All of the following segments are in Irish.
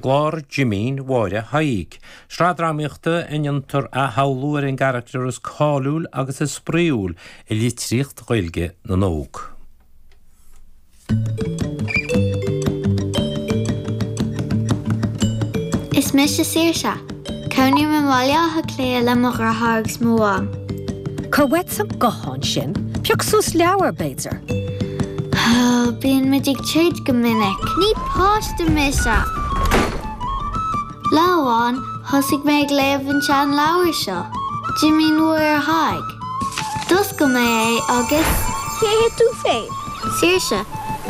gclár Jimín Mháire Thaidhg, sraith drámaíochta ina ndéantar athshamhlú ar an gcarachtar is cáiliúil agus is spraíúil i litríocht Ghaeilge na n-óg. Is mise Saoirse. Cónaím i mBaile Átha Cliath le mo dhreatháir agus mo mham. Cuir uait an guthán sin. Pioc suas leabhar, b'fhéidir. Bhuel, bíonn muid ag troid go minic. Ní páiste mise! Lá amháin, thosaigh mé ag léamh an tseanleabhair seo, Jimín Mháire Thaidhg. D'oscail mé é agus. Cé hé tú féin? Saoirse.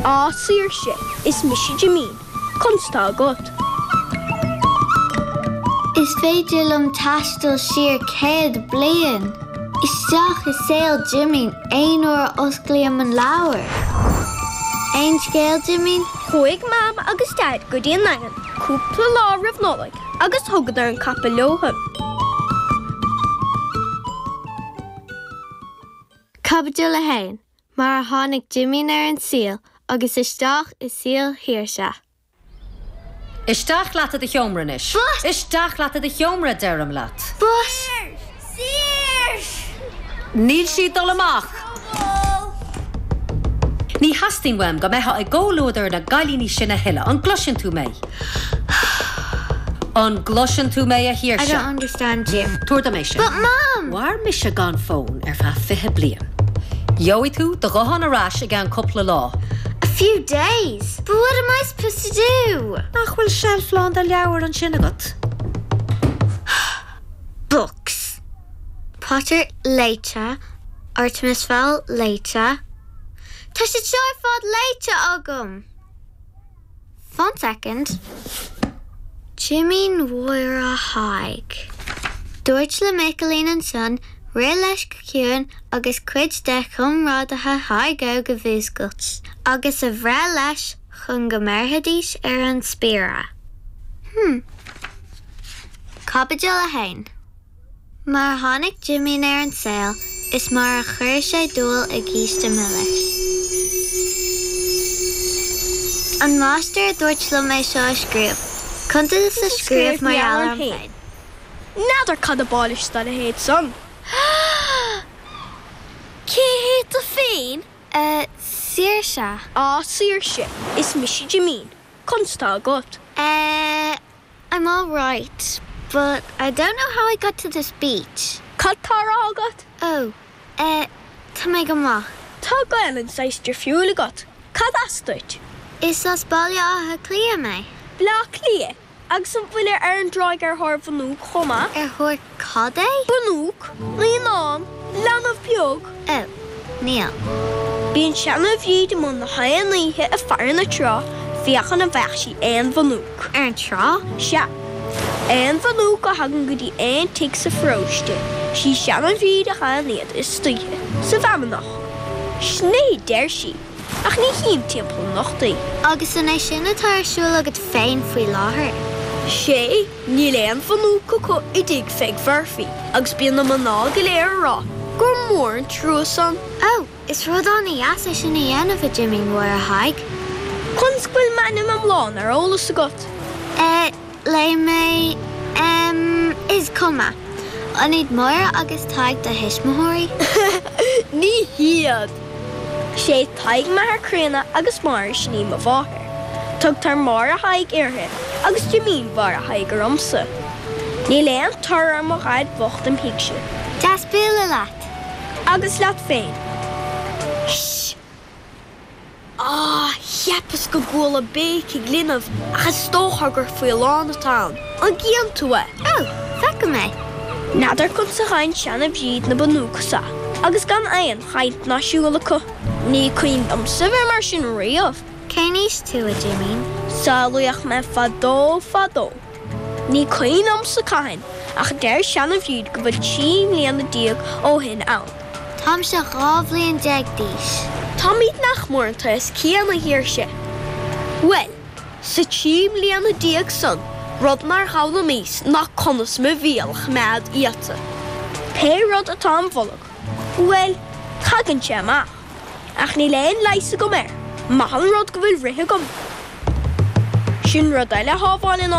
Á, Saoirse, is mise Jimín. Conas tá agat? Is féidir liom taisteal siar céad bliain, isteach i saol Jimín aon uair a osclaím an leabhar. Aon scéal, Jimín? Chuaigh Mam agus Daid go dtí an nDaingean cúpla lá roimh Nollaig agus thugadar an capall leothu. Caibidil 1. Mar a Tháinig Jimín ar an Saol agus Isteach i Saol Shaoirse. Isteach leat i do sheomra anois. But! Isteach leat i do sheomra, deirim leat! But! Níl sí ag dul amach! Ní theastaíonn uaim go mbeitheá i gcomhluadar na gcailíní sin a thuilleadh, an gcloiseann tú mé? An gcloiseann tú mé, a Shaoirse? I don't understand you. Tabhair dom é sin. But Mom! Mhair mise gan fón ar feadh fiche bliain. Gheobhaidh tú do ghuthán ar ais i gceann cúpla lá. A few days? But what am I supposed to do? Nach bhfuil seilf lán de leabhair ansin agat? Books. Potter léite, Artemis Fowl léite. Tá siad seo ar fad léite agam! Fan soicind. Jimín Mháire Thaidhg. Dúirt le Micilín ansan rith leis go ciúin agus cuid de chomrádaithe Thaidhg Óig a mhúscailt agus a bhreith leis chun go mbéarfaidís ar an spiaire. Hm. Caibidil 1. Mar a tháinig Jimín ar an saol is mar a chuir sé dúil i gcíste milis. An máistir a dúirt liom é seo a scríobh, cuntas a scríobh mar gheall orm féin. N'fheadar cad ab áil leis dá leithéid san. Cé hé tú féin? Saoirse. Á, Saoirse, is mise Jimín. Conas atá agat? A I'm all right, but I don't know how I got to this beach. Cad tá á rá agat? Oh, eh, tá mé go maith. Tá Gaelainn saghas difriúil agat. Cad as duit? Is as Baile Átha Cliath mé. Bleá Cliath? Agus an bhfuilir ar an dtráigh ar thóir bhunóc chomh maith? Ar thóir Cad é? Bunóc, naíonán, leanbh beag. Ó, ní hea. Bíonn seana-Bhríd amuigh nach aon oíche ag faire na trá féachaint an bhfeicfeadh sí aon bhunóc. Ar an trá? Sea. Aon bhunóc a thagann go dtí aon tigh sa pharóiste, sí seana-Bhríd a fhaigheann iad istoíche sa bhfeamnach. Sin é a deir sí, ach ní chím timpeall anocht í. Agus an é sin atá ar siúl agat féin faoi láthair? Sea. Níl aon bhunóc acu i dtigh Pheig Mhurphy agus bíonn na mná go léir á rá gur mór an trua san. Ó, is rud an-deas é sin a dhéanamh, a Jimín Mháire Thaidhg. Conas go bhfuil m'ainm iomlán ar eolas agat? Eh, léigh mé. Em, is cuma. An iad Máire agus Tadhg do thuismitheoirí? Ní hiad. 'Sé Tadhg m'athair críonna agus Máire sin í mo mháthair. Tugtar Máire Thaidhg uirthi agus Jimín Mháire Thaidhg ormsa. Níl aon tor ar mo dhaid bhocht im thighse. Deas bualadh leat. Agus leat féin. Sh. Á, cheapas go gcuala béicigh linbh ach is dócha gur faoileán atá ann. An gcíonn tú é? Ó, feicim é. N'fheadar conas a fhaigheann seana Bhríd na bunóca so agus gan aon. chaint ná siúl acu. Ní cuimhin liomsa bheith mar sin riamh. Cén aois tú, a Jimín? Saolaíodh mé fadó fadó. Ní cuimhin liomsa cathain, ach deir Seana Bhríd go bhfuil trí mbliana déag ó shin ann. Táimse dhá bhliain déag d'aois. Táimid nach mór an t-aos céanna. Fíor, sea. Bhuel, sa trí mbliana déag san, rud nár fhoghlaimíos ná conas mo bhéal a choimeád iata. Pé rud atá im bholg. Bhuel, tagann sé amach, ach níl aon leigheas agam air, maith an rud go bhfuil rith agam. Sin rud eile a shábháileann an.